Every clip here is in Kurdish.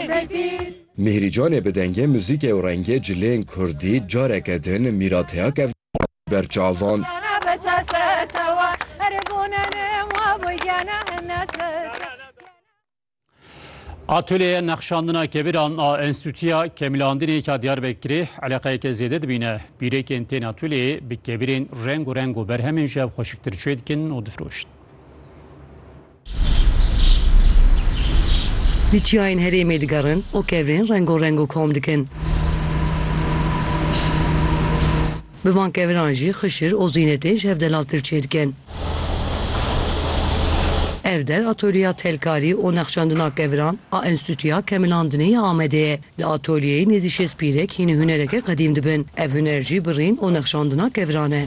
Tekbîr! Mîhrî Canê bi dengê, muzîkê û rengê cilên kurdî careke din mîrateya kevnî ber çavan. Atolyeya nexşandina keviran a Enstîtuya Kemilandinê ya Diyarbekirê eleqeyeke zêde dibîne. Bîrekên tên atolyeyê bi kevirên reng û reng û berhemên ji hev xweşiktir çêdikin û difiroşin. Di çiyayên herêmê digerin û kevirên rengorengo û kom dikin. Bi van keviran jî xişir û zînetên ji hev delal tir çêdikin. Ev der atolyeya telkarî û nexşandina keviran a Enstîtuya Kemilandinê ya Amedê ye. Di atölyeyê nêzî şêst pîrek hînî hunereke qedîm dibin. Ev huner jî bi rîn û nexşandina kevran e.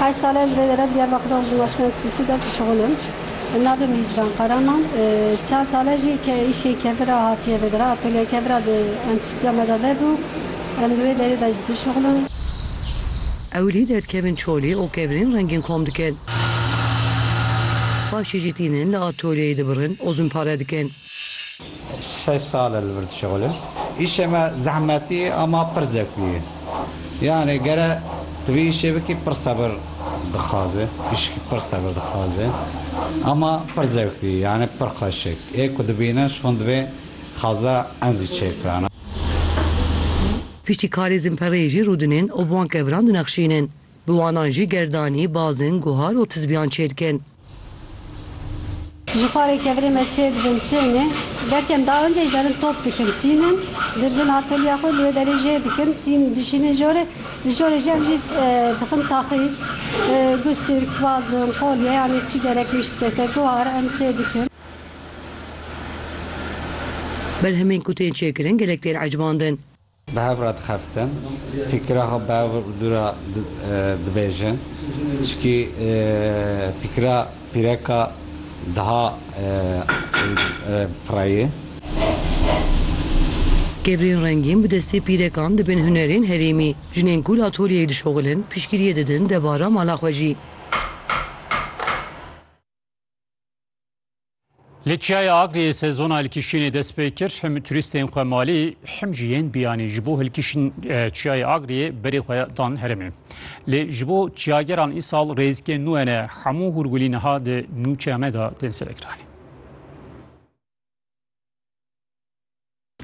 Heşt sal e li vê derê Diyarbekirê û li Weşmez Sûsî de dişixil im. Navê min Hicran Karaman. Çar sal e jî ke îşê kevir a hatiye vê derê. Atölyeya kevir a di enstîtuya me de vebû. Em di wê derê de jî dişixil in. Ewilî derdikevin çolî û kevirên rengîn xom dikin. Paşê jî tînin li atölyeyê dibirin û zûnpare dikin. Sey sal e li vir dişexilim. Îşê me zehmetî ye ama pir zevklî ye. Yanê gere tu vê îşê bikî pir sebir dixwaze. Îşkî pir sebir dixwaze ama pir zevklî ye. Yanê pir xweş e. Ê ku dibîne ji xwe divê xaza em zî çêbike. Piştî karê zimpereyê jî rûdinên û bi wan keviran dinexşînin. Bi wanan jî gerdanî, bazin, guhar û tizbiyan çêdikin. Ji xwarê kevirê me çê dibin tênê. Gerçi em daha önce jî derin top dikin tînin. Dibin atölyeya xwe li wê derê jê dikin. Tîn dişînin jorê. Li jorê jî em jî dixin taxîl, gustîrk, bazin, qolye yanî çi gerek bî ji tike ser guhar em çê dikin. Berhemên ku tên çêkirin gelek tên ecbandin. Bi hev re dixeftin, fîkira xwe bi hev dû re dibêjin. Çikî fîkira pîreka diha fireyê. Kebrîn rengîn bi destê pîrekan dibin hunerên herêmî. Jinên ku li atolyeyê dişoxilin, piştgiriyê didin debara mala xwe jî. Li Çiyaya Agliyê sezona hilkişînê dest pê kir. Him turîstên xwe malî him jî yên biyanî ji bo hilkişîn Çiyayê Agliyê berê xwe dan herêmê. Lê ji bo çiyageran îsal rêzikên nû hene. Hemû hûrgulî niha di nûçeyame de tên serekiranîn.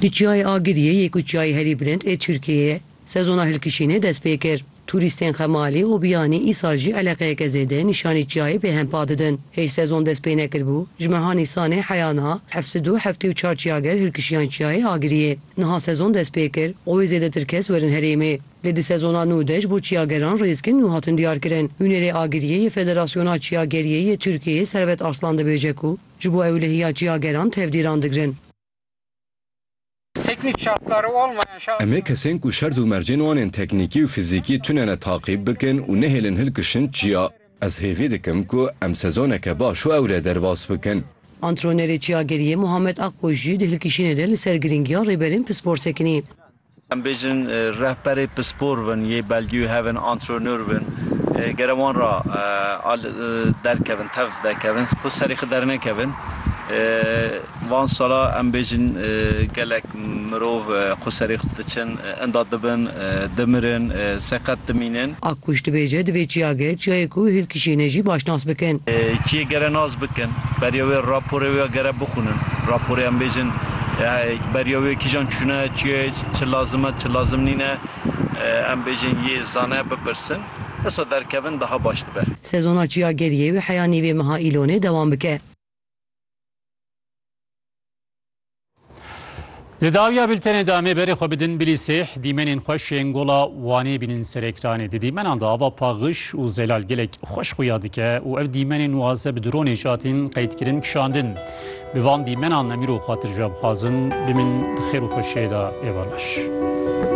Di Çiyayê Agiriyê yê ku çiyayê herî bilind ê Tirkiyeyê ye, sezona hilkişînê dest pê kir. Tûrîstên Xemalî û Biyanî îsal jî eleqeyeke zêde nîşanî çiyayê pê hempa didin. Hêj sezon dest pê nekiribû, ji meha Nîsanê heya niha heft sid û heftê û çar çiyager hilkişiyan çiyayê Agiriyê. Niha sezon dest pê kir û wê zêdetir kes werin herêmê. Lê di sezona nû de ji bo çiyageran rêzgên nû hatin diyarkirin. Nûnerê Agiriyê yê Federasyona Çiyageriyê yê Tirkiyeyê Servet Arslan dibêje ku ji bo ewlehiya çiyageran tevdîran digirin. Em ê kesên ku şert û mercên wan ên teknîkî û fizîkî tune ne taqîb bikin û nehêlin hilkişin çiya. Ez hêvî dikim ku em sezoneke baş û ewre derbas bikin. Antrenerê Çiyageriyê Muhammed Akkoç jî di hilkişînê de li ser girîngiya rêberên pispor sekinî. Em bêjin rehberê pispor bin yê belgî û hevin antrenor bin gere wan ra derkevin tev dekevin xwe serê xwe dernekevin van sala em bêjin gelek mirov xwe serê xwe diçin inda dibin dimirin seqet dimînin. A kuş dibêje divê çiyagir çiyayê ku hîlkişî ne jî baş nas bikin. Çiyê gere nas bikin beriya wê raporê wê gere bixwinin raporê em bêjin Beriya wê kîjan çûne, çiye, çi lazim e, çi lazim nîne, em bêjin yê zane, bipirsin. Disa derkevin daha baş dibe. Sezona çiya geriyê wê heya nîvê meha Îlonê dewam bike. Di dawiya bültenê de amê berê xwe bidin bilî sêh dîmenên xweş yên gola Wanê bînin ser ekranê. Di dîmenan de ava paxiş û zelal gelek xweş xuya dike û ev dîmenên waze bi dronê jatîn qeydkirin kişandin. Bi van dîmenan em îro xatircem xwazin bimîn di xêr û xweşiyê de ê balaş.